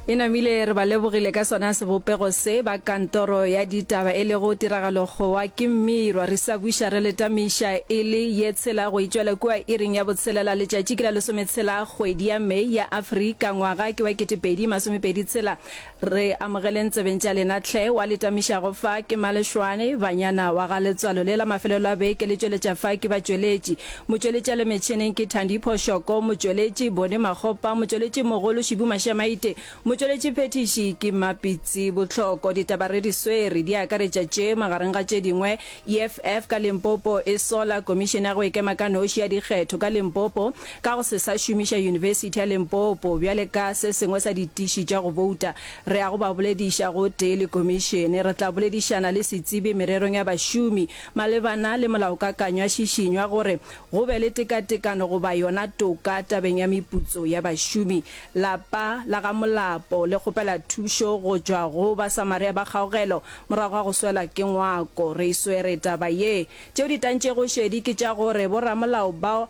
e namile re ba lebogile ka sona sebopego se ba kantoro ya ditaba e lego tiragalo gowa ke mmirwa re sa buša re letamiša e le ye tshela go itšwela kua iring ya botshelela letšatši ke la lesometshela kgwedi ya mei ya afrika ngwaga ke wa ketepedi masomepedi tshela Re amogeleng tsebeng tša lena hle. Wa le tamišago fa ke Malešwane, banyana wa ga letswalo le la mafelelo a beke le tšweletša fa ke batšweletši. Motšweletšale metšhineng ke Thandipho Shoko, motšweletši Bone Makgopa, motšweletši mogolo Šibu Mašamaite, motšweletši phethiši ke Mapitsi Bohloko. Ditaba re di swere di akaretša tše magareng ga tše dingwe EFF ka Limpopo e sola Komišene ya go Ikema ka Noši ya Dikgetho ka Limpopo ka go se sa šomiša Yunibesithi ya Limpopo bjale ka se sengwe sa ditiši tša go bouta. Re ya go ba bolediša gotee le Komišene. Re tla boledišana le setsebi mererong ya bašomi malebana le molaokakanywa šišinywa gore go be le tekatekano goba yona toka tabeng ya meputso ya bašomi. Lapa la ga Molapo le kgopela thušo go tšwa go Basamaria ba Kgaogelo Morago ga go swela ke ngwako, re e swere taba ye. Tšeo di tantšego šedi ke tša gore boramolao bao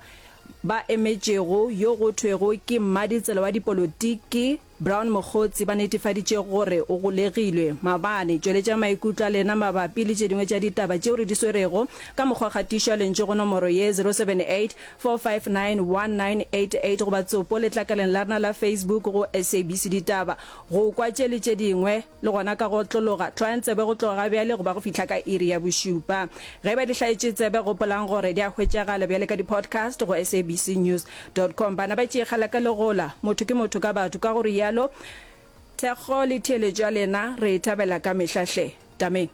ba emetšego yo go thwego ke mmaditsela wa dipolotiki, Brown Mokgotsi, ba netefaditše gore o golegilwe. Maabane, tšweletšang maikutlo a lena mabapi le tše dingwe tša ditaba tšeo re di swerego ka mokgwa kgatišo ya lentšu go nomoro ye, 078-459-1988, goba tsopo letlakaleng la rena la Facebook go SABC Ditaba, go kwa tše le tše dingwe. Le gona ka go otlologa, tlwayang tsebe go tloga bjale go ba go fihla ka iri ya bošupa. Ge e ba di hlaetše tsebe, gopolang gore di a hwetšagala bjale ka di-podcast go sabcnews dot com. Bana ba tšeegela ka legola, motho ke motho ka batho, ka go realo thekgo le theeletšo ya lena re e thabela ka mehla hle. Tameng.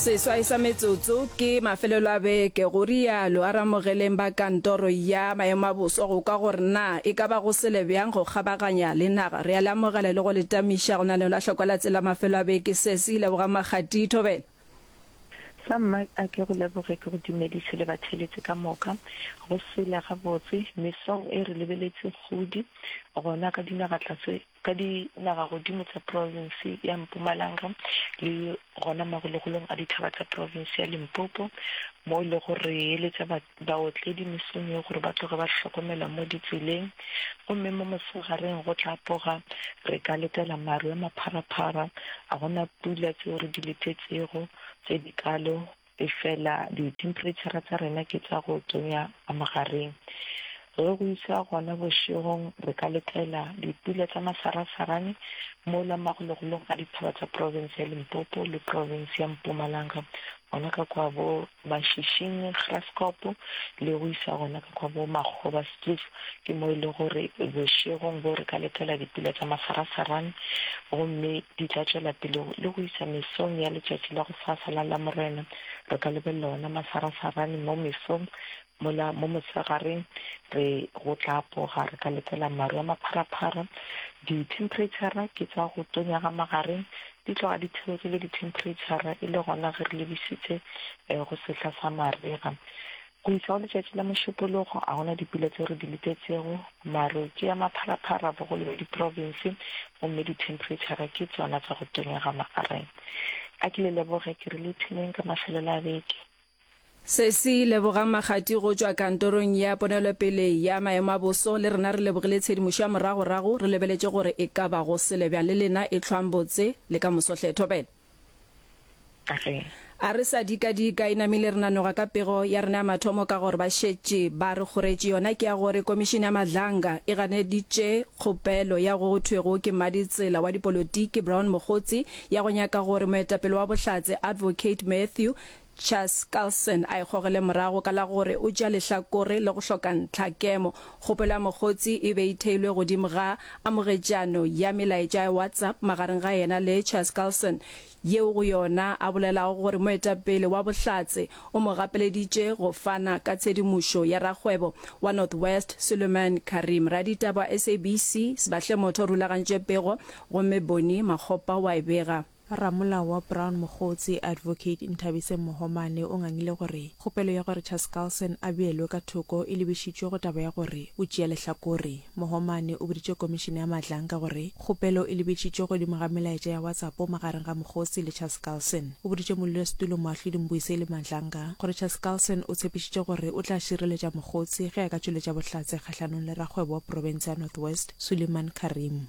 seswai sa metsotso ke mafelelo a beke go rialo a ramogeleng ba kantoro ya maemo a boso go kwa gore na e ka ba go sele bjang go kgabaganya le naga re a le amogela le go le tamiša go na le la tlhokwelatsela mafelo a beke se se ileboga makgati thobela Sa mma, a ke go leboge ke go dumediše le batheeletši ka moka. Go sela gabotse, mesong e re lebeletše kgodi gona ka dinagatlase, ka dinagagodimo tša provinse ya Mpumalanga le gona magologolong a dithaba tša provinse ya Limpopo, mo e lego re eletša ba. Baotledi mesong ye gore ba tloge ba hlokomela mo ditseleng, gomme mo mosegareng go tla poga. Re ka letela maru a mapharaphara. A go na pula tšeo re di letetšego tše dikalo, efela dithemphereitšhara tša rena ke tša go tonya ka mogareng. Ge go iša gona bošegong, re ka letela dipula tša masarasarane mola magologolong a dithaba tša profense ya Limpopo le profense ya Mpumalanga, gona ka kua bo Mashišini, Graskop, le go iša gona ka kwa bo Makgoba, Stroef, ke mo e le gore bošegong boo re ka letela dipula tša masarasarane gomme di tla tšwela pele le go iša mesong ya letšatši la gosasa la Lamorena. Re ka lebelela ona masarasarane mo mesong Mola mo mosegareng re go tla apoga, re ka letela maru a mapharaphara. Dithemphereitšhara ke tsa go tonya ga magareng, di tloga di theogile dithemphereitšhara e le gona ge re lebišitše go sehla sa marega. Go iša go letšatši la Mošupologo ga go na dipula tšeo re di letetšego. Maru ke a mapharaphara bogolo bja diprovinse gomme dithemphereitšhara ke tšona tsa go tonya ga magareng. A ke le leboge ke re le ipshineng ka mafelelo a beke. Sesi, Lebogang Makgati go tšwa Kantorong ya Ponelopele ya Maemo a Boso, le rena re lebogile tshedimošo ya moragorago, re lebeletše gore e ka ba go sele bjang le lena, e hlwang botse le ka moso hle. Thobela, A re sa dika-dika e namile re nanoga ka pego ya rena ya mathomo ka gore ba šetše ba re kgoretše, yona ke ya gore Komišene ya Madlanga e ganeditše kgopelo ya go thwego ke mmaditsela wa dipolotiki Brown Mogotsi ya go nyaka gore moetapele wa Bohlatse Advocate Mathew Chas Carlson a e gogele morago ka la gore o tšea lehlakore le go hloka ntlha. Kemo, kgopelo ya mokgotsi e be e theilwe godimo ga amogetšano ya melaetša ya WhatsApp magareng ga yena le Chas Carlson, yeo go yona a bolelago gore moetapele wa Bohlatse o mo gapeleditše go fana ka tshedimošo ya rakgwebo wa North West Suleman Karim. Raditaba wa SABC Sbahle Motho o rulagantše pego gomme Bonnie Makgopa o a e bega. Ramolao wa Brown Mogotsi, Advocate Nthabise Mohomane o ngangile gore kgopelo ya gore Charles Carlson a beelwe ka thoko e lebišitšwe go taba ya gore o tšea lehlakore. Mohomane o boditše Komišene ya Madlanka gore kgopelo e lebetšitšwe godimo ga melaetša ya WhatsApp magareng ga Mogotsi le Charles Carlson. O boditše Modulasetulo Moahlodi Mbuiseli Madlanka gore Charles Carlson o tshepišitše gore o tla šireletša Mogotsi ge a ka tšweletša bohlatse kgahlanong le rakgwebo wa profense ya North West, Suleiman Karim.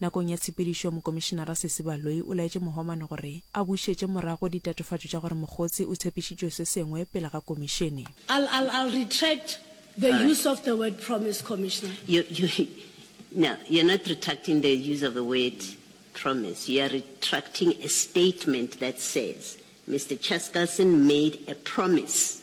Nakong ya tshepedišo, Mokomišenara Sesi Baloyi o laetše Mohoman gore a bušetše morago ditatofatšo tša gore Mogotsi o tshepišitšwe se sengwe pele ga komišene. I'll, I'll, I'll retract the use of the word promise, Commissioner. You, you, no, you're not retracting the use of the word promise. You are retracting a statement that says Mister Chaskalson made a promise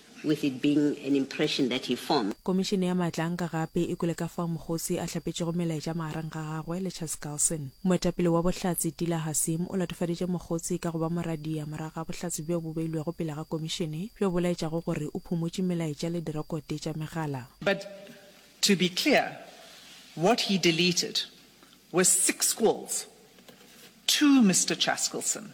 with it being an impression that he formed. Komišene ya Maatlaanka gape e kwele ka fao Mogosi a hlapetšego melaetša magareng ga gagwe le Charles Carlson. Moetapele wa Bohlatse, Tila Hasim, o latofaditše Mogosi ka go ba moradia morago ga bohlatse bjo bo beilwego pele ga komišene bjo bo laetšago gore o phumotše melaetša le direkote tša megala. But to be clear, what he deleted were six calls to Mister Chaskelson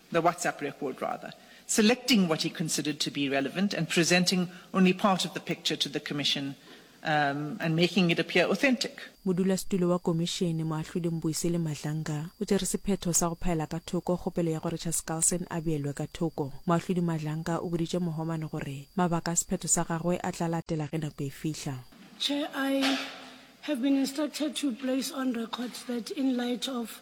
the WhatsApp record rather, selecting what he considered to be relevant and presenting only part of the picture to the Commission um and making it appear authentic. Modulasetulo wa Komišene, Moahlodi Mbuyiseli Madlanga, o tšere sephetho sa go phaela ka thoko kgopelo ya gore Charles Carlson a beelwe ka thoko. Moahlodi Madlanga o boditše Mohoman gore mabaka a sephetho sa gagwe a tla latela ge nako e fihla. Chair, I have been instructed to place on record that in light of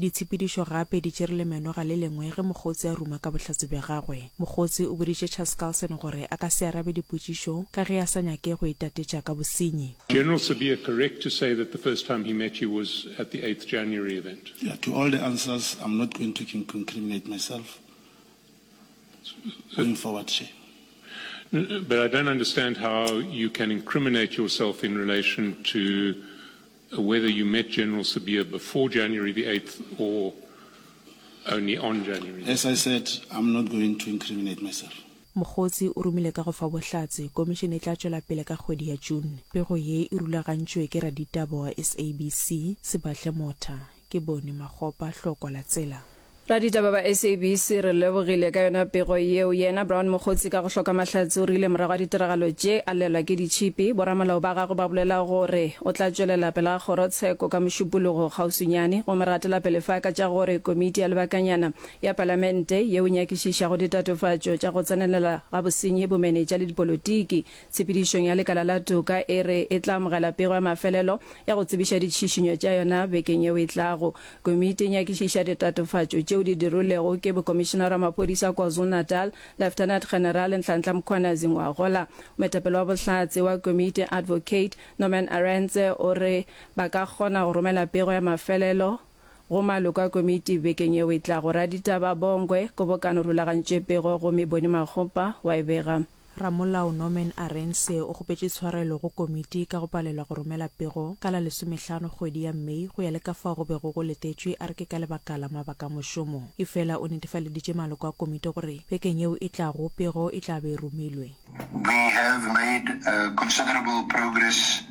Ditshepedišo gape di tšere lemenoga le lengwe ge Mokgotse a ruma ka bohlatse bja gagwe. Mokgotse o boditše Charles Carlson gore a ka se arabe dipotšišo ka ge a sa nyake go itatetša ka bosenyi. General Sibiya correct to say that the first time he met you was at the eighth January event? Yeah, to all the answers I'm not going to incriminate myself going forward here. But I don't understand how you can incriminate yourself in relation to Whether you met General Sibiya before January the 8th or only on January the 8th. As I said, I'm not going to incriminate myself. Mokgotsi o romile ka go fa bohlatse, Komišene e tla tšwela pele ka kgwedi ya June. Pego ye e rulagantšwe ke raditaba wa SABC, Sebahle Motha. Ke bone makgopa hloko la tsela. Raditaba ba SABC re lebogile ka yona pego yeo. Yena Brown Mokgotsi ka go hloka mahlatse o rile morago ga ditiragalo tše a llelwa ke ditšhipi. Boramolao ba gagwe ba bolela go re o tla tšwelela pela kgorotsheko ka Mošupologo kgauswinyane gomme re atela pele fa ka tša go re komiti ya lebakanyana ya Palamente yeo e nyakišišago ditatofatšo tša go tsenelela ga bosenyi bomenetša le dipolotiki Tshepedišong ya lekala la toka e re e tla amogela pego ya mafelelo ya go tsebiša ditšhišinyo tša yona bekeng yeo e tlago. Komiti e nyakišiša ditatofatšo tšeo di dirilwego ke Bokomišenara wa Maphodisa a KwaZulu-Natal, Lieutenant General Nhlanhla Mkhwanazi Ngwagola. Moetapele wa Bohlatse wa komiti, Advocate Norman Arendse o re ba ka kgona go romela pego ya mafelelo go maloko a komiti bekeng yeo e tlago. Raditaba Bongwe, Kobokano rulagantše pego gomme Boni Makgopa wa e bega. Ramolao Norman Arendse o kgopetše tshwarelo go komiti ka go palelwa go romela pego ka la lesomehlano kgwedi ya May go ya le ka fao go bego go letetšwe a re ke ka lebaka la mabaka a mošomo. Efela o netefaleditše maloko a komiti gore bekeng yeo e tlago pego e tla be e romilwe. We have made considerable progress.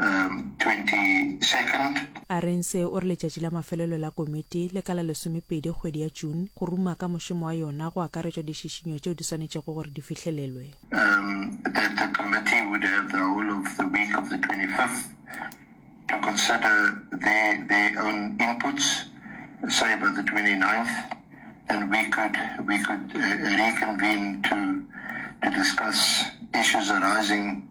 22nd. Arendse o re letšatši la mafelelo la komiti le ka la lesomepedi kgwedi ya June go ruma ka mošomo wa yona go akaretšwa dišišinyo tšeo di swanetšego gore di fihlelelwe. That the committee would have the whole of the week of the 25th to consider their, their own inputs, say by the 29th, and we could, we could uh, reconvene to, to discuss issues arising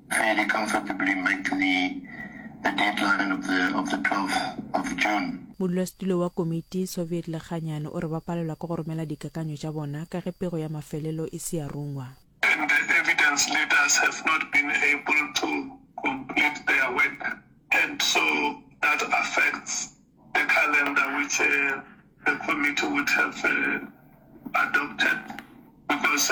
Fairly comfortably met the the deadline of the of the 12th of June. Modulasetulo wa Komiti, Soviet Lekganyane, o re ba palelwa ke go romela dikakanyo tša bona ka ge pego ya mafelelo e se ya rungwa. And the evidence leaders have not been able to complete their work and so that affects the calendar which the committee would have adopted because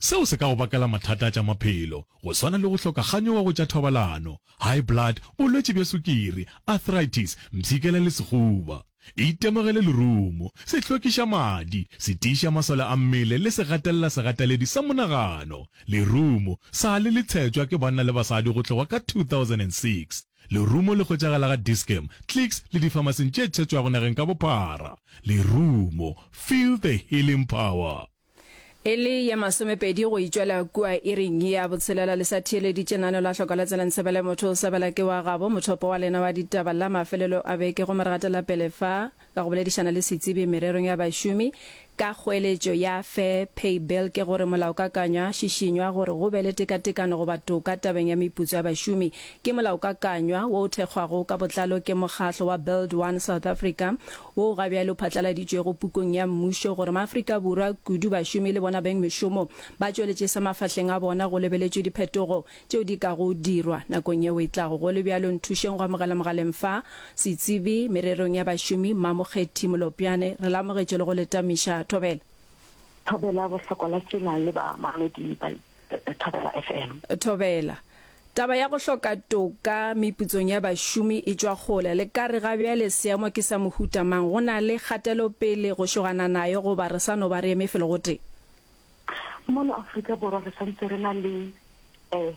Seo se ka go bakela mathata a tša maphelo, go swana le go hloka kganyogo go tša thobalano, high blood, bolwetši bja sukiri, arthritis, mpshikela le sehuba. Itemogele lerumo, sehlokišamadi, se tiiša masole a mmele le segatelela-segataledi sa monagano. Lerumo, sa le le tshetšwa ke banna le basadi go tloga ka 2006. Lerumo le hwetšagala ga Dis-Chem, Clicks le difamasing tše tshetšwago nageng ka bophara. Lerumo, feel the healing power. E le ye masomepedi go itšwela kua iring ya botshelela le sa theeleditše nano la hloka la tselang sebele motho o sebela ke wa gabo mothopo wa lena wa ditaba la mafelelo a beke go moregata la pele fa ka go boledišana le setsebi mererong ya bašomi ka kgoeletšo ya fair pay bill ke gore molaokakanywa šišinywa gore go be le tekatekano goba toka tabeng ya meputso ya bašomi ke molaokakanywa wo o thekgwago ka botlalo ke mokgatlo wa build one south africa woo ga bjale o phatlaladitšwego Pukong ya Mmušo, gore Maafrika Borwa, kudu bašomi le bona beng mešomo, ba tšweletše se mafahleng a bona go lebeletšwe diphetogo tšeo di kago dirwa nakong yeo e tlago. Go le bjalo, nthušeng go amogela mogaleng fa, Setsebi mererong ya bašomi, Mmamokgethi Molopjane. Re lamogetše le go le tamiša. Thobela. Thobela bohloko la tsela le bamamedi ba. Thobela FM. Thobela. Taba ya go hloka toka meputsong ya bašomi e tšwa kgole. Le ka re ga bjale seemo ke sa mohuta mang? Go na le kgatelopele go šogana nayo goba re sa no ba re eme felo gotee? Mono Afrika Borwa re santse re na le eh,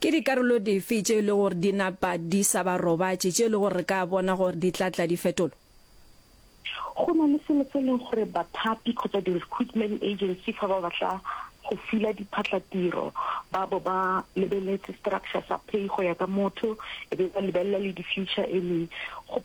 Ke dikarolo dife tše e lego gore di napa di sa ba robatše, tše e lego gore re ka bona gore di tla tla di fetolwa? Go na le selo se e lego gore bathapi kgotsa di-recruitment agency fa ba batla go fila diphatlatiro ba bo ba lebeletse structure sa pay go ya ka motho e be ba lebelela le di-future earning. Go.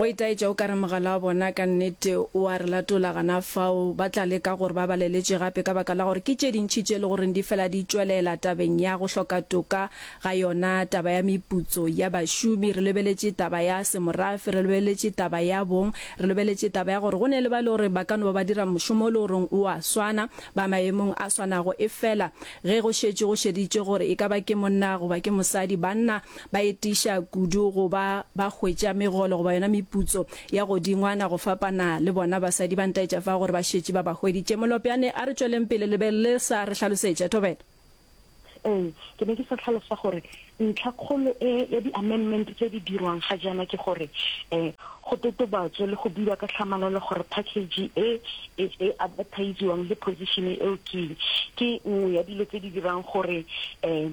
Go itaetša o ka re mogala wa bona ka nnete o a re latola gana fao. Ba tla leka gore ba baleletše gape ka baka la gore ke tše dintši tše e le goreng di fela di tšwelela tabeng ya go hloka toka ga yona taba ya meputso ya bašomi. Re lebeletše taba ya semorafe, re lebeletše taba ya bong, re lebeletše taba ya gore go ne le ba e le gore ba ka no ba ba dira mošomo o e le goreng o a swana, ba maemong a swanago efela ge go šetše go šeditšwe gore e ka ba ke monna goba ke mosadi, banna Ba etiša kudu go ba ba hwetša megolo goba yona meputso ya godingwana go fapana le bona. Basadi ba ntaetša fa gore ba šetše ba ba hweditše. Molopjane a re tšweleng pele le be le sa re hlalosetša. Thobela. Ee, ke ne ke sa hlalosa gore ntlha kgolo e ya di-amendment tse di dirwang ga jaana ke gore um go totobatswe le go buiwa ka tlhamalalo gore package e e e advertisiwang le position eo ke ke nngwe ya dilo tse di dirang gore um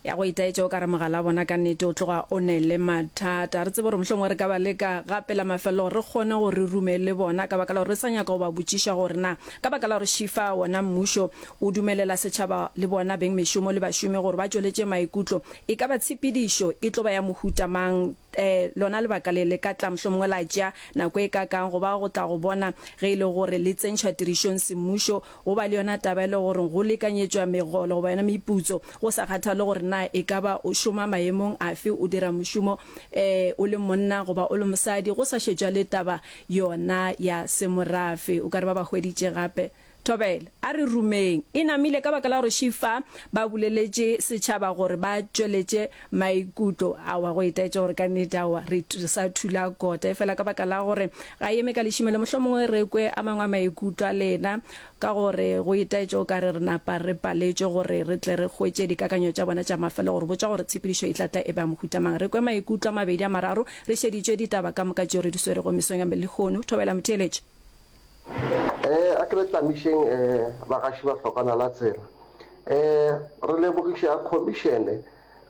ya go itaetša o ka re mogala wa bona ka nnete o tloga o ne le mathata re tsebe gore mohlongwe re ka ba le ka ga pela mafelelo gore re kgone go re rume le bona ka baka la gore re sa nyaka go ba botšiša gore na ka baka la gore šifa wona mmušo o dumelela setšhaba le bona beng mešomo le bašomi gore ba tšweletše maikutlo e ka ba tshepedišo e tlo ba ya mohutamang Ee, lona lebaka le le ka tla mohlomongwe la tšea nako e kakaang go ba go tla go bona ge e le gore le tsentšhwa tirišong semmušo, go ba le yona taba e le gore go lekanyetšwa megolo goba yona meputso, go sa kgathale gore na e ka ba o šoma maemong afe, o dira mošomo ee o le monna goba o le mosadi, go sa šetšwa le taba yona ya semorafe. O ka re ba ba hweditše gape. Thobela, a re rumeng. E namile ka baka la gore she fa ba buleletše setšhaba gore ba tšweletše maikutlo. Aowa, go itaetša gore ka nnete, aowa, re sa thula kota. Efela ka baka la gore ga e eme ka lešimelo, mohlomongwe re kwe a mangwe a maikutlo a lena, ka gore go itaetša o ka re re napa re paletšwe gore re tle re hwetše dikakanyo tša bona tša mafelelo gore botša gore tshepedišo e tla tla e ba ya mohuta mang. Re kwe maikutlo a mabedi a mararo re šeditšwe ditaba ka moka tšeo re di swerego mesong ya lehono. Thobela, motheeletši. E, a ke re tlamišeng e, bagaši ba hlokwana la tsela. E, re lebogiša Khomišene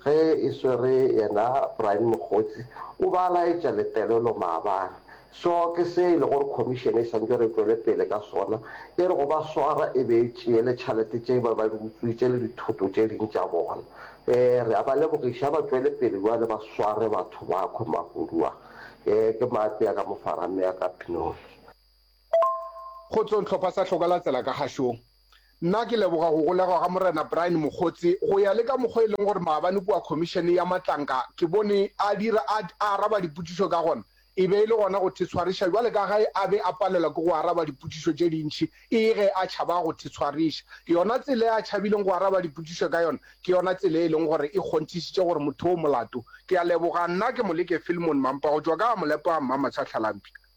ge e swere yena Brian Mokgotsi, o ba laetša letelelo maabane. So ke se e le gore Khomišene e swantšwe re tšwele pele ka sona, e re go ba swara e be e tšee le tšhalete tše ba ba di utswitše le dithoto tše ding tša bona. E, re a ba lebogiša, ba tšwele pele bjale ba sware batho ba khwe mahudu a. E, ke mape a ka mo fara mme a ka pinong. Kgotsong hlopha sa Hloka la Tsela ka Gashong. Nna ke leboga go golegwa ga Morena Brian Mokgotse go ya le ka mokgwa e leng gore maabane kua Khomišene ya Matlanka ke bone a dira a araba dipotšišo ka gona. E be e le gona go thetshwariša bjale ka ge a be a palelwa ke go araba dipotšišo tše dintši e ge a tšhaba go thetshwariša. Yona tsela e a tšhabileng go araba dipotšišo ka yona ke yona tsela e leng gore e kgonthišitše gore motho o molato. Ke a leboga. Nna ke Moleke Filmon Mampa go tšwa ka Amolepo a Mmamatshwa Tlhalampša.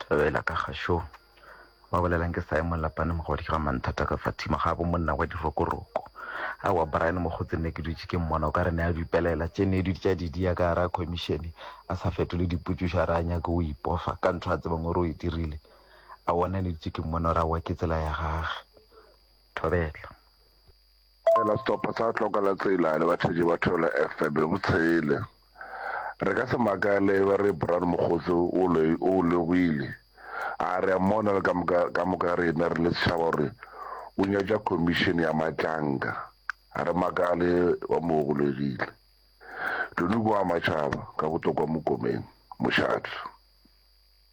Thabela ka gašo ba bolelang ke Simon Lapane mogodi ga manthata ka Fatima ga bo monna wa dirokoroko a wa Brian mogotsi nne ke dutše ke mmona o ka re ne a dupelela tše ne dutša didi ya ka ra commission a sa fetole diputšušo a re a nyake o ipofa ka ntho a tsebang gore o e dirile a wona ne dutše ke mmona o ra wa ke tsela ya gage Thabela Fela sehlopha sa Hloka la Tsela le batheetši ba Thwelo FM bo tshele. Re ka se makale e ba re Bran Mokgotse o lo o logile. A re a mmona le ka moka ka moka rena re le setšhaba gore o nyatša khomišene ya matlanka. A re makale ba mo ogolegile. Toniko wa matšhaba ka botokwa Mokomeng, mošate.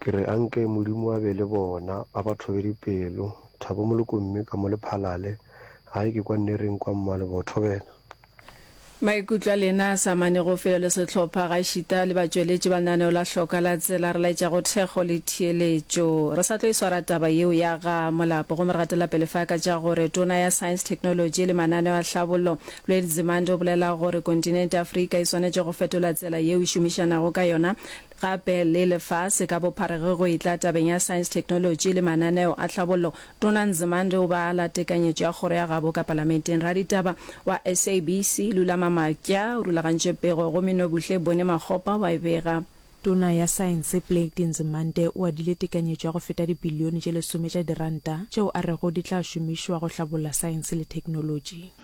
Ke re anke Modimo a be le bona, a ba thobe dipelo. Thabo Molokomme ka mo Lephalale, Gae ke kwa Nnereng kwa Mmalebotho wena. Maikutlo a lena a sa amanego felo le sehlopha gaešita le batšweletši ba lenaneo la Hloka la Tsela re laetša go thekgo le theeletšo. Re sa tlo e swara taba yeo ya ga Molapo gomme re gatela pele fa ka tša gore Tona ya Science, Technology le Mananeo a Tlhabollo, Lweli Nzimande o bolela gore kontinente Afrika e swanetše go fetola tsela yeo e šomišanago ka yona Gape le lefase ka bophara ge go etla tabeng ya saense, theknolotši le mananeo a tlhabollo. Tona Nzimande o be a la tekanyetšo ya kgoro ya gabo ka palamenteng. Raditaba wa SABC, Lula Mamakya o rulagantše pego gomme Nobuhle Bone-Makgopa wa e bega. Tona ya Saense Blade Nzimande o adile tekanyetšo ya go feta dibilione tše lesome tša diranta tšeo a rego di tla šomišwa go hlabolla saense le theknolotši.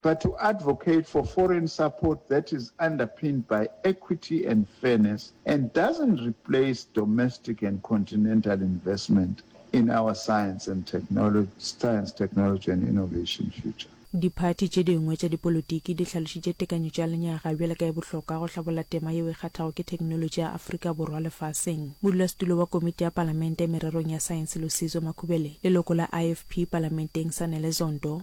But to advocate for foreign support that is underpinned by equity and fairness and doesn't replace domestic and continental investment in our science and technology, science, technology and innovation future. Diphathi tše dingwe tša dipolotiki di hlalošitše tekanyetšo ya lenyaga bjalo ka ye bohlokwa go hlabolla tema yeo e kgathago ke theknolotši ya Afrika Borwa lefaseng. Modulasetulo wa Komiti ya Palamente mererong ya Saense Lusizo Makhubele, leloko la IFP Palamenteng Sanele Zondo,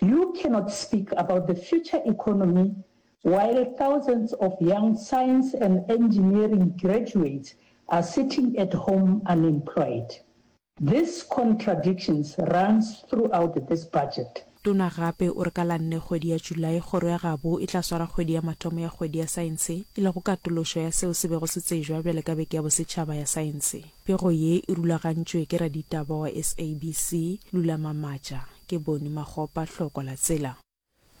You cannot speak about the future economy while thousands of young science and engineering graduates are sitting at home unemployed. This contradictions runs throughout this budget. Tona gape o re ka la nne kgwedi ya July kgoro ya gabo e tla swara kgwedi ya mathomo ya kgwedi ya saense e lego katološo ya seo se bego se tsejwa bjale ka beke ya bosetšhaba ya saense. Pego ye e rulagantšwe ke raditaba wa SABC, Lula Mamatša. Ke Bony Makgopa, Hloko la Tsela.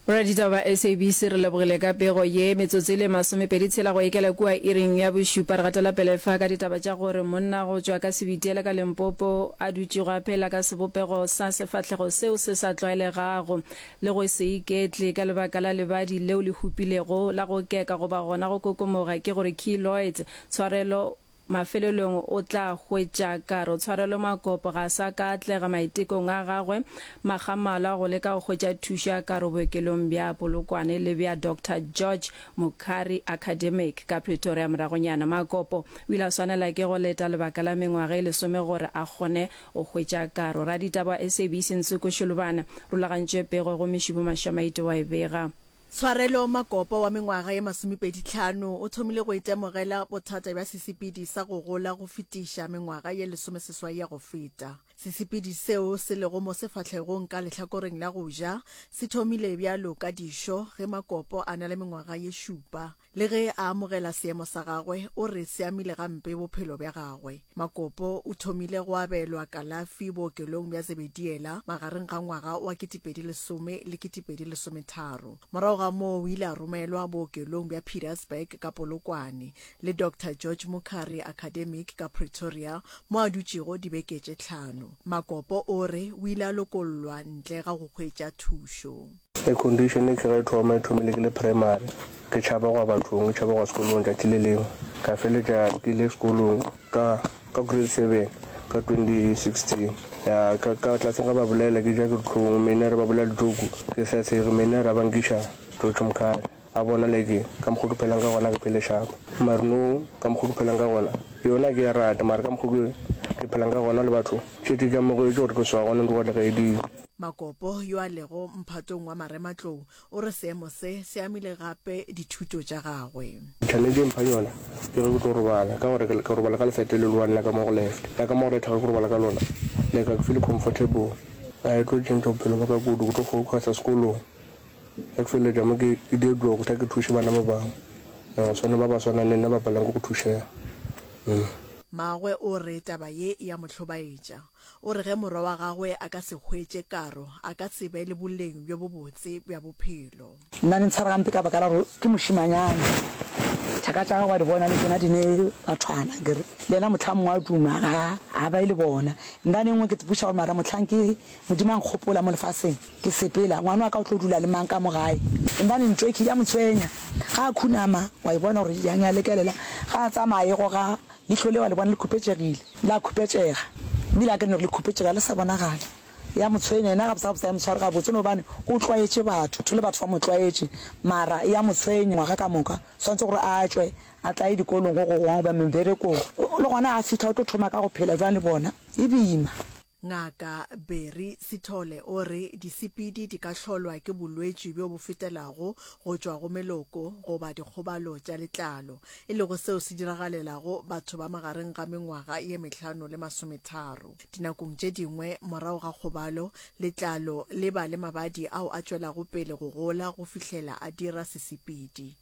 Boraditaba ba SABC re lebogile ka pego ye. Metsotso e le masomepedi tshela go ikela kua iring ya bošupa re gatela pele fa ka ditaba tša gore monna go tšwa ka Sebitiele ka Limpopo a dutšego a phela ka sebopego sa sefahlego seo se sa tlwaelegago le go se iketle ka lebaka la lebadi leo le hupilego la go keka goba gona go kokomoga ke gore keloids tshwarelo Mafelelong o tla hwetša kare o tshwarelwe makopo, ga a sa ka atlega maitekong a gagwe. Makgamalwa go leka go hwetša thušo ya kare bookelong bja Polokwane le bja Doctor George Mukhari Academic ka Pretoria moragonyana, Makopo o ile a swanela ke go leta lebaka la mengwaga e lesome gore a kgone go hwetša karo. Raditaba wa SABC Nsuku Shulubana rulagantše pego go Meshumo Mashamaite wa e bega. Tshwarelo Makopa wa mengwaga ye masomepedi tlhano o thomile go itemogela bothata bja sesepedi sa go gola go fetiša mengwaga ye lesomeseswai ya go feta. Sesepedi seo se lego mo sefahlegong ka lehlakoreng la go ja se thomile bjalo ka dišo ge Makopo a na le mengwaga ye šupa. Le ge a amogela seemo sa gagwe, o re se amile gampe bophelo bja gagwe. Makopo o thomile go abelwa kalafi bookelong bja Zebediela magareng ga ngwaga wa 2010 le 2013. Morago ga moo o ile a romelwa bookelong bja Pietersburg ka Polokwane le Doctor George Mukhari Academic ka Pretoria mo a dutšego dibeke tše tlhano. Makopo o re o ile a lokollwa ntle ga go hwetša thušo. Air condition e tloga e thoma e thomile ke le primary ke tšhaba go ya bathong ke tšhaba go ya sekolong tšatši le lengwe ka feletša ke ile sekolong ka ka grade seven ka 2016 ya ka ka tlaseng ga ba bolela ke ja ke ditlhong mene re ba bolela ditoku ke sa tshege mene ra bankiša totšomkhale A bona le ke ka mokgo ke phelang ka gona ke phele shapa mare no ka mokgo ke phelang ka gona yona ke ya rata mare ka mokgo ke ke phelang ka gona le batho ke ke ka mokgo ke gore ke swa gona ntlo gona ga e dile Makopo yo a lego mphatong wa marematlou o re seemo se se amile gape dithuto tša gagwe. Challenge e mphang yona ke ge ke tlo robala ka gore ke robala ka lefete le lowane la ka mo go left la ka mo go right ga ke robala ka lona like ga ke feel comfortable ga e tlo tšhentšha bophelo ba ka kudu ke tlo focusa sekolong Go tšweletša mo ke diedlogo go tla ke thuše bana ba bangwe, ba swana ba ba swanang le nna ba palang ke go thušega. Mmagwe o re taba ye e a mo hlobaetša. O re ge morwa wa gagwe a ka se hwetše karo, a ka se be le boleng bjo bobotse bja bophelo. Nna di ntshwara gampe ka baka la gore ke mošemanyana. Thaka tša gagwe wa di bona le tšona di ne bathwana akere. Le yena mohlang mongwe a duma ga a ba e le bona. Nna nengwe ke tsepuša gore mara mohlang ke Modimo a nkgopola mo lefaseng ke sepela, ngwana wa ka o tlo dula le mang ka mo gae? Gombane ntweki ya mo tshwenya. Ga a khunama, wa e bona gore yang ya lekelela. Ga a tsamaya a e goga, leihlo le wa le bona le khupetšegile, la khupetšega. Mme le akanya gore le khupetšega le sa bonagale. Ya mo tshwenya, yena gabotse-gabotse ga e mo tshware gabotse gobane o tlwaetše batho le batho ba mo tlwaetše. Mara ya mo tshwenya ngwaga ka moka. O swanetše gore a tšwe a tla ye dikolong go gogongwe goba meberekong. Le gona ga a fihla o tlo thoma ka go phela bjang le bona? E boima. Ngaka Barry Sithole o re disepedi di ka hlolwa ke bolwetši bjo bo fetelago go tšwa go meloko goba dikgobalo tša letlalo, e lego seo se diragalelago batho ba magareng ga mengwaga ye mehlano le masometharo. Dinakong tše dingwe morago ga kgobalo, letlalo le ba le mabadi ao a tšwelago pele go gola go fihlela a dira sesepedi.